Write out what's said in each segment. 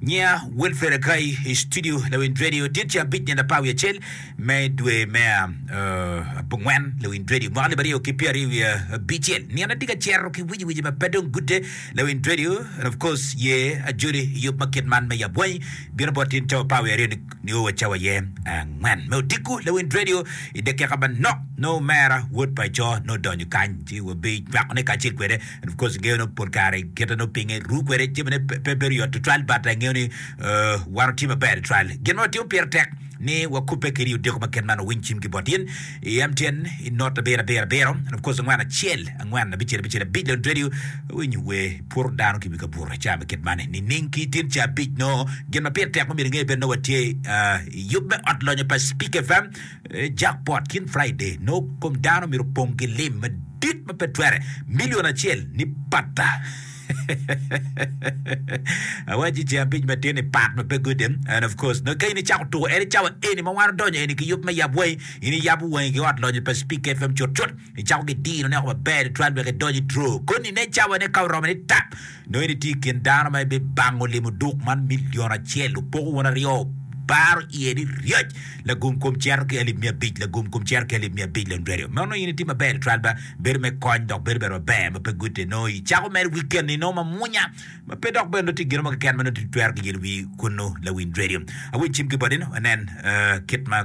Nyiya Wilfred Akai i studio lawind redio dit ca abic nyen apar wiye acel me dwe me abongwen lawind redio mwaka alip aryo ki pyeri wiye abicel. Nino atye ka cero ki wiji wiji ma pe dong gude lawind redio and of course ye ajoli i yub ma kit man me yabwanyi bino bot in cawa apar wiye aryo nio wa cawa ye angwen me odiko lawind redio i dakika manok no mera wod pa ico no donyo kany ci wabi nywakone kacel kwede En of course ngeyo no pol kare kite no pinge ru kwede jami ne pe bedo yot tutwal but angeyo ni uh, wan otye maber tutwal. Gin ma watimo pire tek ni wakubbe kede i odeko ma ket man wa winy cim ki bot in i MTN i not abiro abiro abiro and of course angwen acel angwen abicel abicel abic lon radio winyo we puro dano ki wi kabuto ca me ket man nining ki tin ca abic no gin ma pire tek ma myero inge bed no watye uh, i yub me ot lonyo pa Speak FM Jakpot kin Friday nongo kom dano myero opong ki lim madit ma pe twere million acel ni patta. Awaci ce abic matin ni part ma pe gode and of course nongo ka in icako tuko en icawa eni ma wan odonyo eni ki yub me yab wangi in iyabo wangi ki ot lonyo pa Speak FM cut cut icako ki dino ne oko maber tutwal wek idonyo i draw koni ne icawa ne ka oromo ni tap Nongo in itye i kin dano ma ibibango limo duk man milion acel, opoko wun aryo, baro iye ni ryec, lagum kom cito ki alip miya abic, lagum kom cito ki alip miya abic lon radio. Nongo in itye maber i trial ba, bedo me kony dok bedo bene maber ma pe gutte. Nongo icako mere weekend ni nongo mamwonya, ma pe dok bene nongo tye gino mo keken ma nongo tye twero ki yelo wiyi kunnu lawiny radio. Awecim ki botino, wanen kit ma.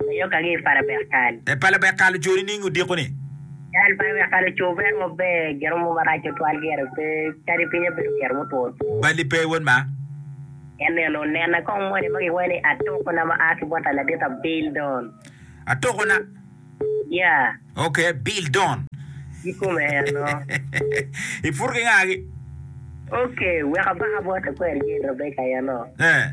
Ayok ange i pala bekal. E pala bekal ojori niing odiko ni. Cal pala bekal oco ber mo ber giro mo marac tutwal gire pe kadi pinye bedo giro mutwo two. Bali pe wod ma. En neno nena kong moni ma giwayo ni atoko na ma aa ki bot aladit a Bill Don. Atoko na. Yeah. Ok Bill Don. Gi kome en no. I pur ki nga gi. Ok wek abaka bot akweri Jane Rebecca en no. Eh.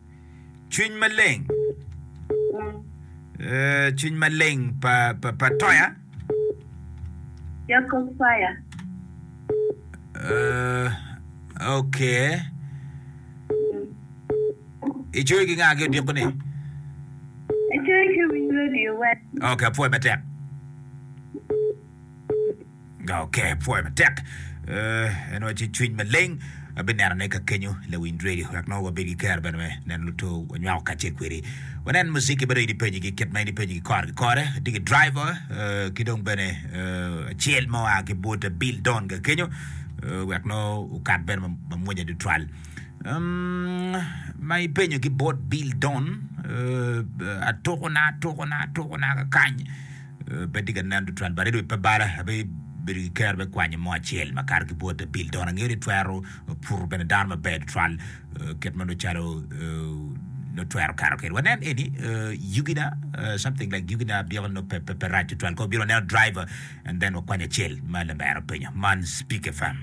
Cwiny maleng eh, cwiny maleng pa, pa, pa Toya. Jacob Fire. Eh, ok. Icoyo ki ng'a ki odiko ni? Acoyo ki winy radio wet. Ok, apwoyo matek. Nga oke pwoyo matek, en wa ci cwiny maleng abineno ne ka kenyo lawiny radio wek nongo wabed ki kero bene me neno luto wanywako kace kwedi wanen musiki bene ini page gi kit ma ini page gi kore ki kore digi driver ki dong bene acel mo a ki bute bill don ga kenyo wek no ukat bene mamwonya dutwal ma ipenyo ki bot bill don atukuna atukuna atukuna kakany Pe tye ka nen tutwal bade dong pe bala. Abedo ki kero me kwanyo mo acel makato ki bwot abil dong angeyo ni twero puto bene dano maber tutwal kit ma nongo calo nongo twero kato kede. Wanen eni yugi na something like yugi na abyeko nongo pe pe rac tutwal kong wabino waneno driver and then wakwany acel ma lamera openyo man Speak FM.